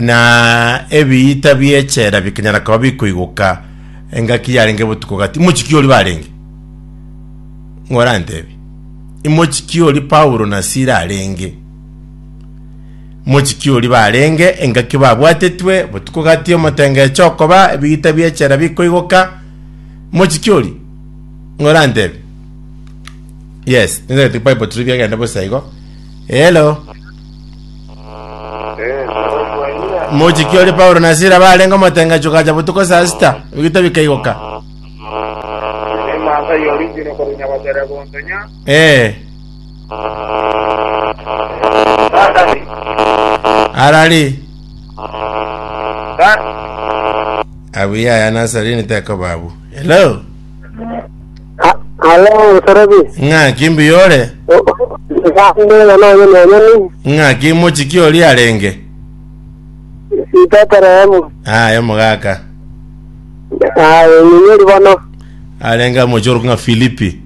na ebiita bi'echela bikanyara koba bikoigoka engaki yarenge botuko gati. Imochiki ori barenge? Ng'o orantebi? Imochiki ori Paulo na Sila arenge? Mochiki ori barenge engaki babwatetwe botuko gati omotengecho okoba ebiita bi'echela bikoigoka. Mochiki ori? Ng'o orantebi? Yes, nende Bible turi biagenda bosa igo. Hello. Mochiki ore Paulo na Sila barenge omotengecho gacha botuko saa sita, ebito bikaigoka. Eh, arari abuya ya Nasarini teko babu. Hello. Ha- Halo, Mosorobi. Ng'aki mbuya ore? O- o- Naende na nonyoni onyoni. Ng'aki mochiki oria arenge? Ibetelehemu. Aye mogaka. Aye, nyinyori bono. Arenge amoche orokwa ng'a Filipi.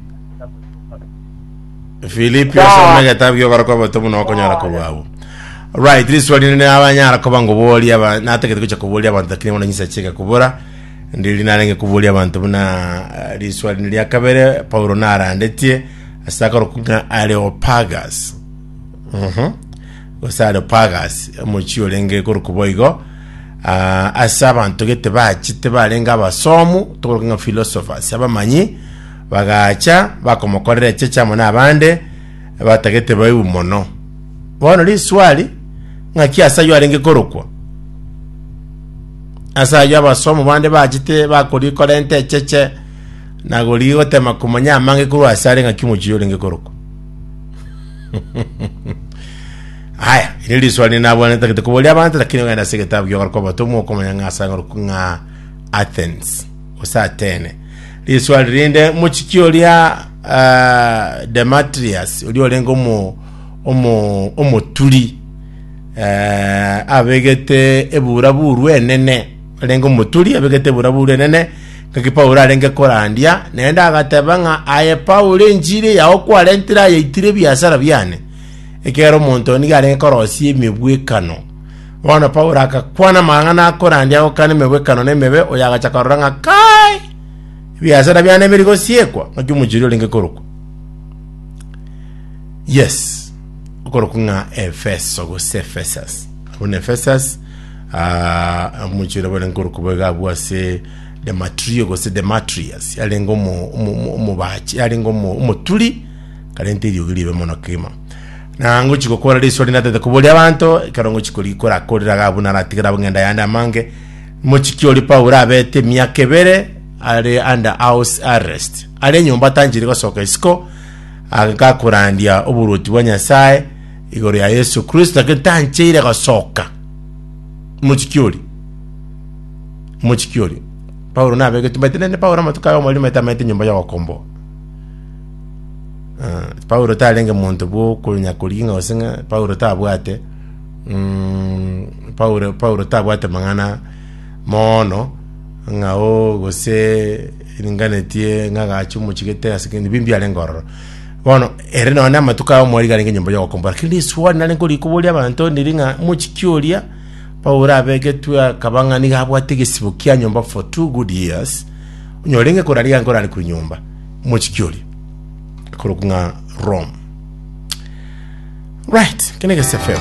Filipi Sawa. osome egetabu gi'okorokwa oboto buna okonyora korwa agwo. Right, riswa rinde abanyara koba ngoboria aba natagete gocha koboria abanto lakini bono nyisa chika kubura. Ndiri narenge koboria abanto buna riswali ria kabere Paulo narandetie ase akoroku ng'a Areopagus. Mhm. Gose Areopagus, omochie orenge korokwa boigo. Ah, ase abanto gete bachete barenge abasomu, tokoroka ng'a philosophers, abamanyi, bagacha bakomokorera echeche amo n'abande, batagete baibu mono. Bono riswali, ng'aki ase ayio arenge korokwa? Ase ayio abasomu bande bachete bakorikora ente echeche na gorigia gotema komanya amange korwa ase are ng'aki omochie orenge korokwa. Aya, iri riswali rinde nabwanete tagete koboria abanto lakini ogenda ase egetabu gi'ogokorokwa abatomwa okomanya ng'a ase ang'orokwa ng'a Athens gose Atene. Riswali rinde mochiki oria ah, Demetrius oria orenge omo omo omoturi Eh, abegete eburaburu enene, arenge omoturi, abegete eburaburu enene, ngaki Paulo arenge korandia, naende agateba ng'a aye Paulo enchiri yao kwarentire ayaitire ebiasara biane, ekiagera omonto nigo arenge korosia emegwekano. Bono Paulo agakwana amang'ana akorandia agokana emegwekano na emebe, oyo agacha korora ng'a kai ebiasara biane biri gosiekwa, ngaki omochiri orenge korokwa. Yes. Okorokwa ng'a Efeso gose Ephesus, abwo na Ephesus, ah, omochie oria bore nkorokwa boigo abwo ase Dematrio gose Demetrius, yarenge omo- omo- omo- omobachi, yarenge omo- omoturi, karente eriogi ribe mono kegima. Na ngochi gokora riso rinde atete koboria abanto, ekero ngochi kori- korakorera iga abwo naratigere abwo ng'enda yande amange, mochiki oria Paulo abete emiaka ebere are under house arrest, are enyomba tanchiri gosoka isiko, agakorandia oboruoti bwa Nyasae igoro ya Yesu Kristo, lakini tancheire gosoka. Mochiki ori, mochiki ori, Paulo nabegetwe, maite nende Paulo amatuko aye omoriri maite amaete nyomba y'ogokomboa. Ah, Paulo tarenge monto bw'okonya koriginga gose ng'a Paulo tabwate mm, Paulo Paulo tabwate mang'ana mono ng'ao gose Iringanetie ng'agache omochigete ase kende bimbi arenge ororo. Bono ere none amatuko ao mwari garenge nyomba yogokombora. Kiri risuani nare nkori koboria abanto ndiri ng'a mochiki oria Paulo abegetwe akaba ng'a niga abwate egesibo kia nyomba for two good years. Onyore inge korariga nkorare kuri nyomba. Mochiki oria. Korokwa ng'a Rome. Right. Kene gese FM.